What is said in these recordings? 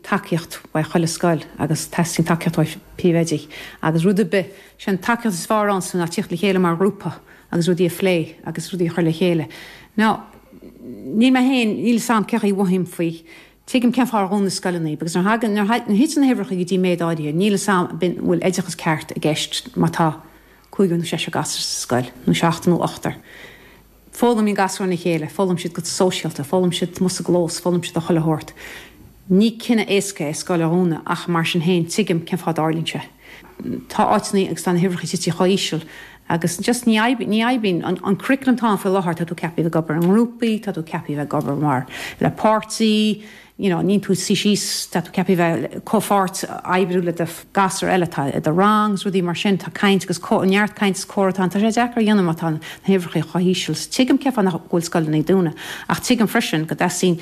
tacaíocht ó chuile scoil agus teastaíonn tacaíocht ó phríomhoidí agus rud ar bith. Sé an tacaíocht is fearr ansin ná tíocht le chéile mar ghrúpa agus rudaí a phlé agus rudaí a chur le chéile. Now níl mé féin, níl 'fhios a'm céard a mhothaím faoi, tuigim cén fáth ar dhún na scoileanna agus nuair thagann, nuair thiteann na huimhreacha go dtí méid áirithe, níl 'fhios a'm, b'fhéidir, an bhfuil oideachas ceart i gceist má tá cúigear nó seisear gasur sa scoil, nó seachtar nó ochtar. Foghlaimíonn gasúir óna chéile, foghlaimíonn siad go sóisialta, foghlaimíonn siad amuigh sa gclós, foghlaimíonn siad a chuile shórt. Ní cinneadh éasca é scoil a dhúnadh ach, mar sin féin, tuigim cén fáth a dtarlaíonn sé. Tá áiteanna agus tá na huimhreacha titithe chomh híseal agus just ní oibríonn, ní oibríonn. An curriculum atá ann faoi látháir, tá tú ceaptha a bheith ag obair i ngrúpaí, tá tú ceaptha a bheith ag obair mar, le páirtí, you know ní bhíonn tú ag suí síos tá tú ceaptha bheith ag comhpháirt oibriú le do ghasúir eile atá i do rang is rudaí mar sin tá caint agus neart caint is comhrá tá an tá sé deacair a dhéanamh má tá na huimhreacha chomh híseal so tuigim cén fáth nach go bhfuil scoileanna ag dúnadh ach tuigim freisin go dteastaíonn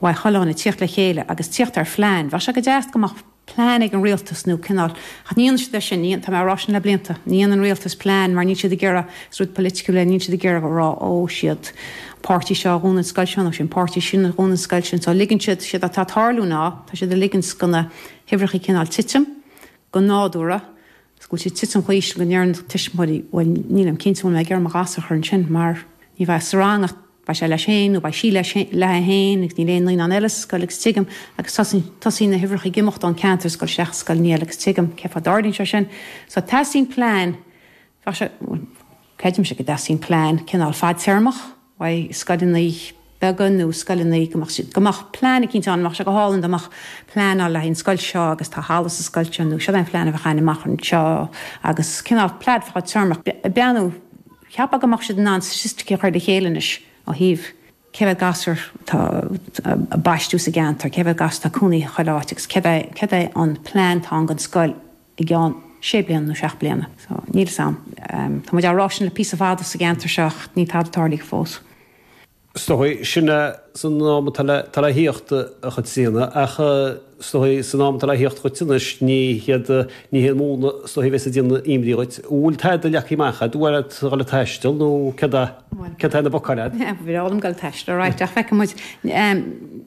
ó scoileanna tíocht le chéile agus tíocht ar phlean bheadh sé go deas go mbeadh plean ag an rialtas nó cineál. Ach ní dhéanann siad é sin, ní, tá mé á rá sin le blianta, ní dhéanann rialtas plean mar níl siad ag iarraidh, is rud politiciúil é, níl siad ag iarraidh a rá ó, siod é an páirtí seo a dhún an scoil seo nó sin é an páirtí sin a dhún an scoil sin. So ligeann siad, séard atá ag tarlú ná tá siad ag ligint do na huimhreacha cineál titim go nádúra, go bhfuil siad ag titim chomh híseal go ndeireann tuismitheoirí bhuel nílim cinnte an bhfuil mé ag iarraidh mo ghasúr a chur ansin mar ní bheidh sa rang ach Beidh sé leis féin, nó beidh sí léithi féin, agus níl aon naíonán eile sa scoil, agus tuigim, agus tosaíonn na huimhreacha ag imeacht ón gceantar scoile isteach i scoileanna eile, agus tuigim cén fáth a dtarlaíonn sé sin. So teastaíonn plean, bheadh sé, bhuel, creidimse go dteastaíonn plean cineál fadtéarmach, bheadh scoileanna beaga nó scoileanna, go mbeadh siad, go mbeadh plean eicínt ann, bheadh sé go hálainn dá mbeadh plean ann le haghaidh an scoil seo agus tá halla sa scoil seo nó siod é an phlean a bheadh ann amach anseo agus cineál plean fadtéarmach, you know. Cheapfá go mbeadh siad in ann staitisticí a chur le chéile anois ó thaobh cé mhéad gasúr atá ag baistiú sa gceantar, cé mhéad gasúr atá ag cónaí i chuile áit agus céard é an plean atá ann don scoil i gceann sé bliana nó seacht mbliana. So, níl fhios a'm. Tá muid á rá sin le píosa fada sa gceantar seo ach níl tada tarlaithe fós. So feicfidh muid san am atá le tíocht céard a dhéanfas, ach san am atá le tíocht a chuid tinnis, ní hiad, ní hiad múna, stopfaidh a bheith ag déanamh imní dhuit. An bhfuil tada leagtha amach a'd? An bhfuil a'd dul ag taisteal nó céard a, céard atá ar na bacáin a'd? Bhuel, bhfuair a'm dul ag taisteal alright, ach feicfidh muid.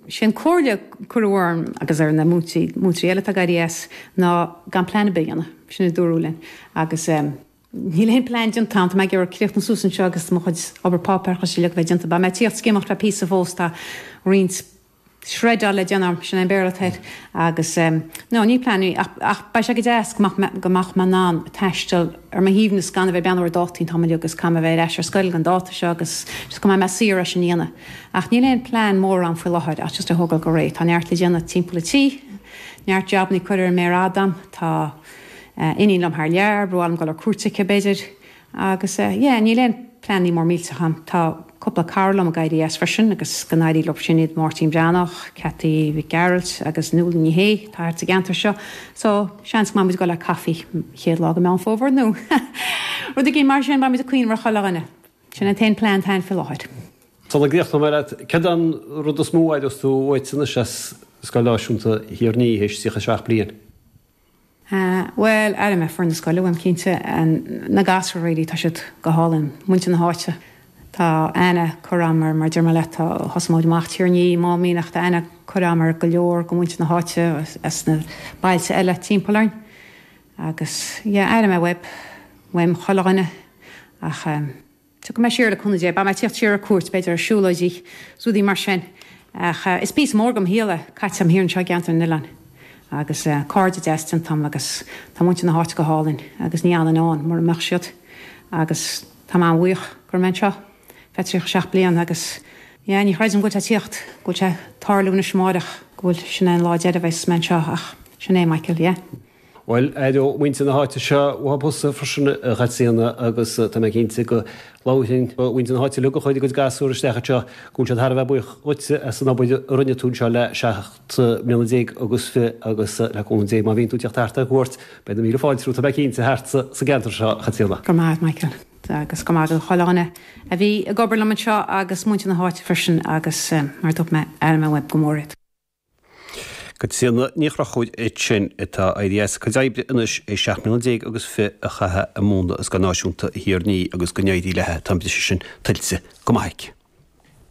Sé an comhairle a cuireadh orm agus ar na múinteoirí, múinteoirí eile atá ag éirí as, ná gan plean ar bith a dhéanamh, sin a dúradh linn, agus. Níl aon plean déanta ann. Tá mé ag iarraidh críochnú suas anseo agus mo chuid obair páipéarachais uilig a bheith déanta. Beidh mé ag tíocht isteach is amach le píosa fós, tá roinnt shreddáil le déanamh orm, sin é an Béarla atá air, agus em. No, níl plean ach, ach beidh sé go deas go mbeadh mé, go mbeadh mé in ann taisteal ar mo shuaimhneas gan a bheith beann ar dátaí an t-am uilig agus caithfidh mé bheith ar ais ar scoil an dáta seo agus just go mbeidh mé saor é sin a dhéanamh. Ach níl aon plean mór ann faoi láthair ach just a thógáil go réidh. Tá neart le déanamh timpeall an tí, neart jabannaí curtha ar an méar fhada agam, tá, iníon liom thar lear, ba mhaith liom dul ar cuairt aici b'fhéidir agus yeah níl aon pleanannaí mór millteach a'm. Tá cúpla cara liom ag éirí as freisin agus go n-éirí leo sin iad Máirtín Breathnach, Cathy Mhic Gearailt agus Nuala Ní Shé atá thart sa gceantar seo so seans go mbeidh muid ag dul ar coffee chéad lá de Mheán Fómhair nó rud éigin mar sin, beidh muid ag cuimhneamh ar chuile dhuine. Sin an t-aon plean atá a'm faoi láthair. Tá na glaoch tamall leat. Céard é an rud is mó a aireos tú uaitse anois as Scoil Náisiúnta Thír an Fhia, théis 37 bliain? Sea, bhuel, aire mé, foireann na scoile uaim, cinnte, na gasúir really, tá siad go hálainn, muintir na háite, tá ana cur am ar, mar a deir mé leat, tá, thosaigh muid amach Tír an Fhia amháin a bhí ann ach, tá aithne curtha a'm ar go leor de mhuintir na háite as na bailte eile timpeall orainn agus yeah, aireoidh mé uaim, uaim chuile dhuine ach eh. Tiocfaidh mé siar le cúnamh Dé. Beidh mé ag tíocht siar ar cuairt, b'fhéidir, ar siúlóidí, rudaí mar sin. Ach is píosa mór de mo shaol é caite agam thiar anseo i gCeantar na nOileán. Agus cairde deas déanta agam agus tá muintir na háite go hálainn agus ní fhanfainn ann mura mbeadh siad. Agus tá mé an-bhuíoch go raibh mé anseo ar feadh 37 bliain agus, yeah, ní chreidim go bhfuil sé ag tíocht, go bhfuil sé ag tarlú anois amárach, go bhfuil, sin é an lá deiridh a bheas mé anseo ach sin é, Michael, yeah. Bhuel, aireoidh muintir na háite seo uathu thusa freisin, a Chaitríona, agus tá mé cinnte go labhraíonn muintir na háite uilig a chuir a gcuid gasúr isteach anseo go bhfuil siad thar a bheith buíoch dhuitse as an obair a rinne tú anseo le seacht mbliana déag agus fiche agus, le cúnamh Dé, má bhíonn tú ag tíocht thart ar cuairt, beidh na míle fáilte romhat, tá mé cinnte, thart sa gceantar seo, a Chaitríona. Go raibh maith agat, Michael. Agus go raibh maith ag chuile dhuine a bhí ag obair liom anseo, agus muintir na háite freisin, agus mar a dúirt mé, aireoidh mé uaim go mór iad. Caitríona Ní Chonchúir ansin atá ag éirí as a cuid oibre anois théis 17 mbliana agus fiche a chaitheamh ag múineadh i Scoil Náisiúnta Thír an Fhia, agus go n-éirí léi, tá an méid sin tuillte go maith aici.